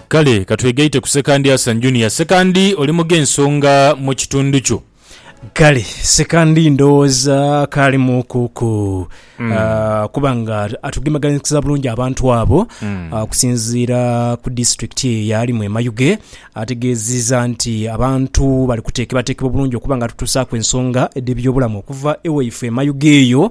Kale ka twegaite ku Sekandi Asan Junior. Sekandi oli mu gh'ensonga mu kitundu kyo. Kale Sekandi ndowooza akaalimuuku ku ah, kuba nga atugemaganikiza bulungi abantu abo ah, okusinziira ku disitulikiti eyo yaalimu e Mayuge ategeezizza nti abantu bali kuteekebateekebwa bulungi okuba nga tutuusaaku ensonga edh'ebyobulamu okuva ewaifwe e Mayuge eyo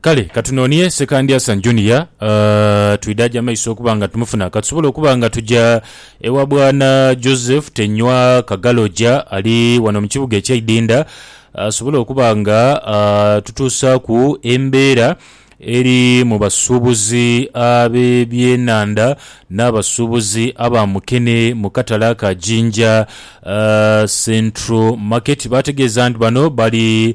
Kale ka tunonie Sekandyasa Junior twidhaje amaiso okuba nga tumufuna. Ka tusobole okuba nga tuja ewa Bwana Joseph Tenywa Kagaloja ali wano mu kibuga ekya Idinda asobole okuba nga atutuusaaku embeera eri mu basuubuzi ab'ebyenhandha n'abasuubuzi aba mukene mu katale ka Jinja Central Market. Baategeeza nti bano bali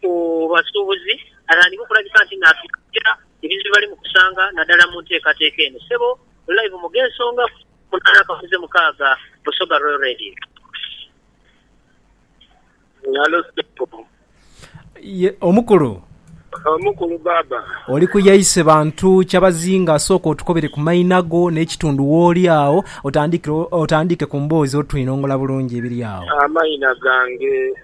ku basuubuzi atandike okulabika nti naatuukirira ebizibu bye bali mu kusanga naddala mu nteekateeka eno. Ssebo Live mu G'ensonga ku munaana Kabuze Mukaaga, Busoga Royal Radio. Halo ssebo. Ye omukulu. Omukulu baaba. Oli ku yaise bantu kyabazinga sooka otukobere ku maina go n'ekitundu w'oli agho otandikire otandike ku mboozi otwinongola bulungi ebiri agho. Amaina gange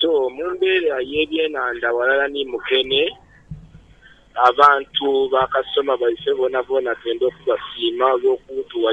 So mu mbeera y'ebyenhandha ghalala ni mukene, abantu ba kasitoma baife boonaboona twendha okubasiima olw'okutuwa